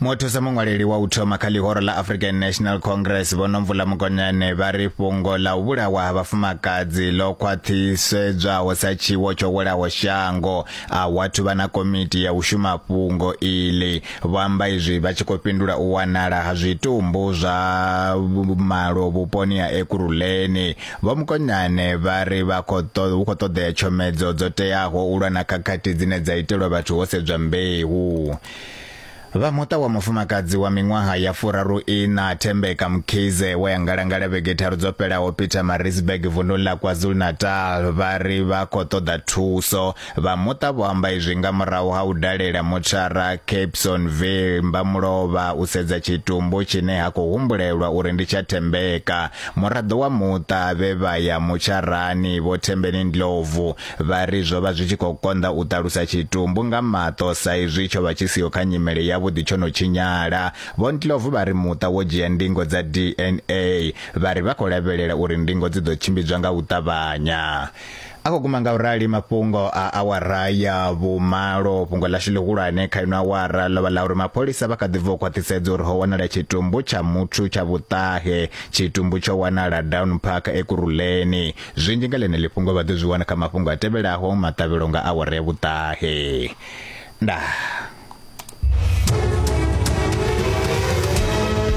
mothusa muṅwaleli wa u thoma kha ḽihoro ḽa african national congress vho nomvula mukonyane vha ri fhungo ḽa u vhulawa ha vhafumakadzi ḽo khwaṱhisedzwaho sa tshiwo tsho welaho shango a wathu vha na komiti ya u shuma fhungo iḽi vho amba izwi vha tshi khou fhindula u wanala ha zwitumbu zwa malo vhuponi ha ekuruleni Vho Mokonyane vha ri vha khou ṱoḓa hu khou ṱoḓea tshomedzo dzo teaho u lwa na khakhathi dzine dza itelwa vhathu ho sedzwa mbeu. Vha muṱa wa mufumakadzi wa miṅwaha ya furaru ina Thembeka Mkhize we a ngalangala vhege tharu dzo fhelaho Peter Marisburg vundu la KwaZulu-Natal vha ri vha khou ṱoḓa thuso Vha muṱa vho amba izwi nga murahu ha u dalela motshara Capesonville Mbamulovha u sedza tshitumbu tshine ha khou humbulelwa uri ndi tsha Thembeka. Muraḓo wa muṱa vhe vha ya motsharani Vho Thembeni Ndlovu vha ri zwo vha zwi tshi khou konḓa u ṱalusa tshitumbu nga maṱo sa izwi tsho vha tshi siho kha nyimele yavhuḓi tsho no tshinyala. Vho Ndlovu vha ri muṱa wo dzhia ndingo dza DNA vha ri vha khou lavhelela uri ndingo dzi ḓo tshimbidzwa nga u ṱavhanya. a khou guma nga u rali mafhungo a awara ya vhumalo fhungo ḽashu ḽihulwane kha ino awara ḽo vha ḽa uri mapholisa vha kha ḓi bva u khwaṱhisedza uri ho wanala tshitumbu tsha muthu tsha vhuṱahe tshitumbu tsho wanala down park ekuruleni zwinzhi nga ḽeneḽi fhungo vha ḓo zwi wana kha mafhungo a tevhelaho maṱavhelo nga awara ya vhuṱahe ndaa